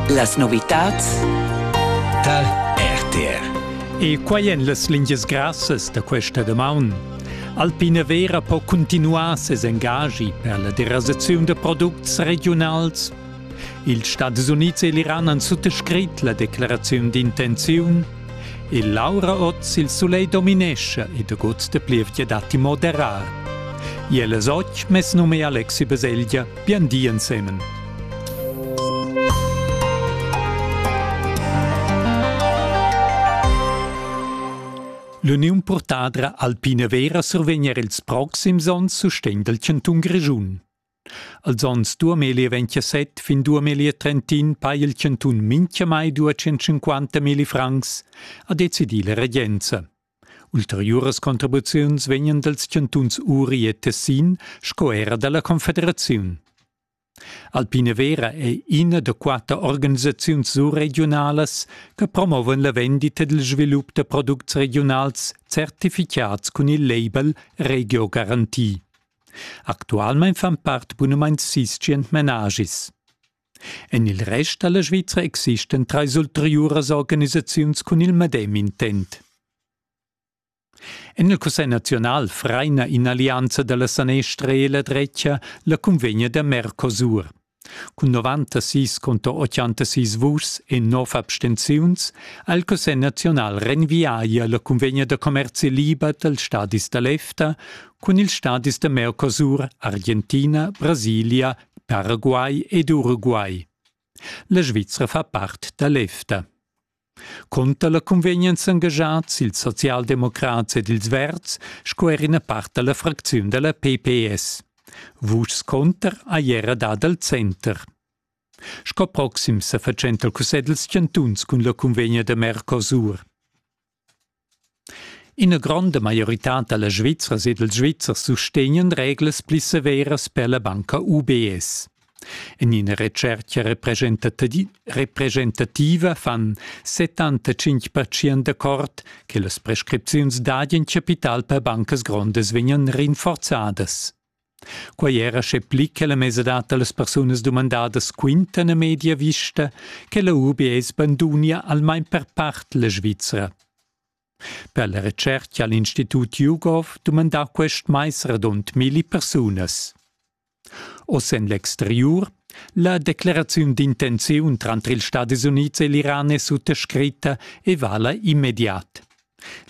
Las novitads tal RTR. E quai èn las lingias grassas da questa damaun. Alpina Vera po cuntinuar ses engagi per la derasaziun da products regiunals. Ils Stadis Unids e l'Iran han suttascrit la declaraziun d'intenziun. E Laura oz il soleil dominescha e da gods de plievgia datti moderar. Iel es och mes num è Alexi Baselgia. Bien di ensemen. L'uniun purtadra Alpina Vera survegna ils proxims onns sustegn dal chantun Grischun. Als onns 2027 fin 2031 pa il chantun mincha mai 250 mili francs, ha decidì la regenza. Ulteriuras contribuziuns vegnan dals chantuns Uri e Tessin sco era dalla Confederaziun. Alpina Vera è ina da quatter organisaziuns surregiunalas che promovan la vendita dil svilup da products regionals certificads cun il label Regio Garanti. Actualmein fan part bunamain sis tschient menagis. En il rest da la Svizra existan trais ulteriuras organisaziuns cun il medem intent. En il Cussegl naziunal fraina in'allianza da la sanestra e la drecha la cunvegna da Mercosur. Cun 96 contro 86 vuschs e 9 abstenziuns ha il Cussegl naziunal renviaia la cunvegna da commerzi liber dals stadis da l'EFTA cun ils stadis da Mercosur, Argentina, Brasilia Paraguay ed Uruguay. La Svizra fa part da l'EFTA. Cunter la cunvegnan s'engaschats ils socialdemocrats ed ils verds sco er ina part da la fracziun da la PPS. Vuschs cunter ha era dad al center. Sco proxim sa fatschenta il cussegl dals chantuns cun la cunvegna da Mercosur. Ina gronda maioritad da las Svizzras ed ils Svizzers sustegnan reglas pli severas per la banca UBS. En ina retschertga representativa fan 75% d'accord che las prescripziuns dad in chapital per bancas grondas vegnan rinforzadas. Quei era sche pli che la mesadad dallas persunas dumandadas quintan a media vista che la UBS bandunia almein per part la Svizra. Per la retscherca ha l'Institut YouGov dumandà quest mais radund milli persunas. Oz en l'exteriur la decleraziun d'intenziun tranter ils Stadis Unids e l'Iran è suttascritta e vala immediat.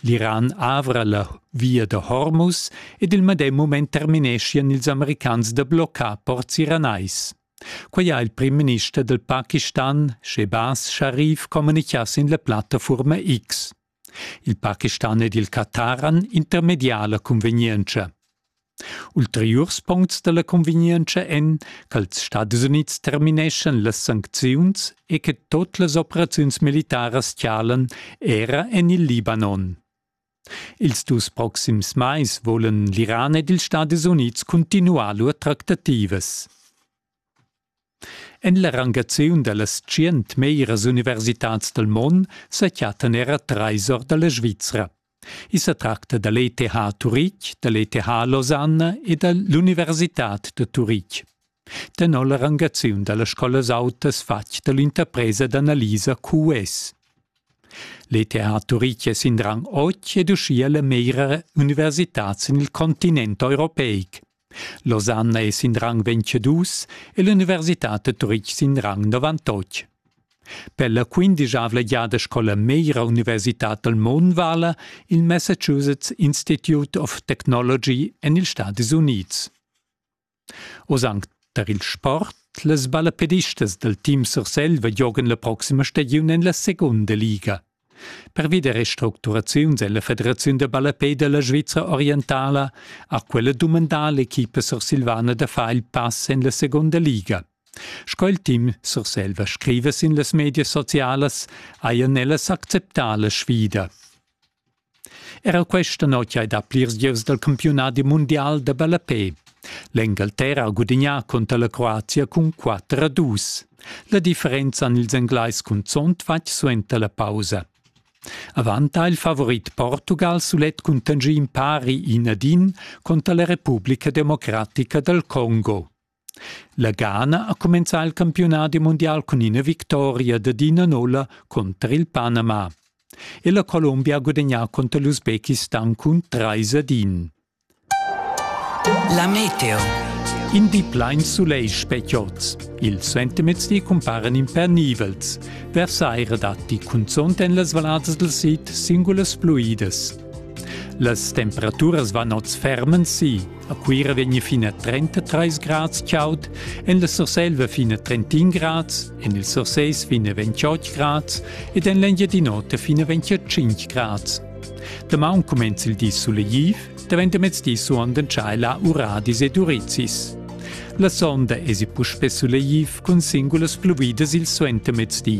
L'Iran avra la via da Hormuz ed il medem mument termineschian ils americans da bloccar ports iranais. Quai ha il primminister dal Pakistan, Shehbaz Sharif, communichà sin la plattafurma X. Il Pakistan ed il Qatar han intermedià la cunvegnientscha. Ulteriurs puncts dalla convegnientscha ein ch'als Stadis Unids termineschan las sancziuns e che tot las operaziuns militaras tialan era en il Libanon. Ils dus proxims mais volan l'Iran ed ils Stadis Unids cuntinuar lur tractativas. En la rangaziun da las tschient meglras universitads dal mond sa chattan era trais or da la Svizra. I sa tracta da l'ETH Turitg, da l'ETH Lausanne e da l'Universitad da Turitg. Tenor la rangaziun da las scolas autas fatg da l'interpresa d'analisa QS. L'ETH Turitg è sin rang 8 ed uschia la meglra universitad sin il continent europeic. Losanna es in rang 22 e l'università da Turitg sin rang 98. Per la quindischavla giada scola meira universitad dal Mon vala il Massachusetts Institute of Technology en ils Stadis Unids. Oz anc tar il sport, las ballapedistas dal team Surselva giogan la proxima stagiun en la segunda liga. Pervi da restructuraziuns è la Federaziun da ballapei da la Svizra orientala ha quella dumandà l'equipa sursilvana da far il pass en la segunda liga. Sco il team Surselva scriva sin las medias socialas, hajan ellas acceptà la sfida. Era questa notg hai dà plirs gieus dal campiunadi mundial da ballapè. L'Engalterra ha gudignà cunter la Croazia cun 4 a 2. La differenza han ils Englais cunzont fatg suenter la pausa. Avant ha il favorit Portugal sulet cun tangì impari in ad in conter la Repubblica democratica dal Congo. La Ghana ha cumenzà il campiunadi mundial cun ina victoria dad ina nulla cunter il Panama. E la Colombia ha gudagnà cunter l'Usbekistan cun 3 ad 1. La meteo. In di plain sulegl speciots. Ils sentimezdi cumparan impernivels. Versaire datti cunzunt en las valladas del sid singulas pluidas. Las temperaturas van oz fermen si. A Cuira vegn fin a 33 grads chaud, en la Surselva fin a 31 grads, en il Surses fin a 28 grads ed en l'Engiadin'Ota fin a 25 grads. Damaun cumenza il di sulegliv, davent da mezdi suondan tschaiला uradis ed urizis. La sonda esi puspè sulegliv cun singulas pluvidas il suentermezdi.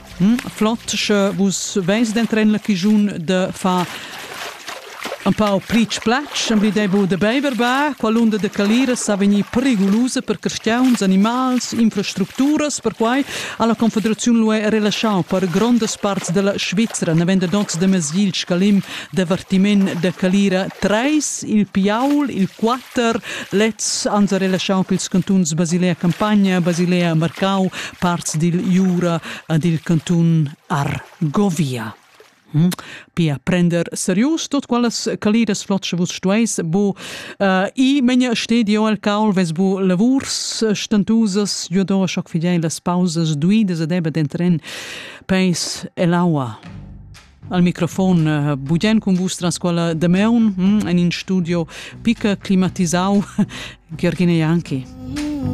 Flot, sche vus veis d'entren la chigiun de far un pau pritsch platsch, emblidei bu de beiver ba, quall'unda de calira sa vegnir perigulusa per carstiauns, animals, infrastructuras, perquai ha la Confederaziun lu relaschau per grondas parts della Svizra, naven da noz de Mesgil scalim d'avvertiment de calira treis, il Piaul, il quater, lez ans ha relaschau pils cantuns Basilea Campagna, Basilea Marcau, parts dil Jura ad il cantun Argovia. Hm? Pia prender serius tot qualas caliras flotsch vus stueis bu uh, i menja stedio al caul ves bu lavurs stantusas jo do schoc fidei las pausas duidas ad eba dentren peis el aua al microfon uh, budien cun vus tras quella de meun hm? en in studio pica climatisau Gergine Janki. Mm.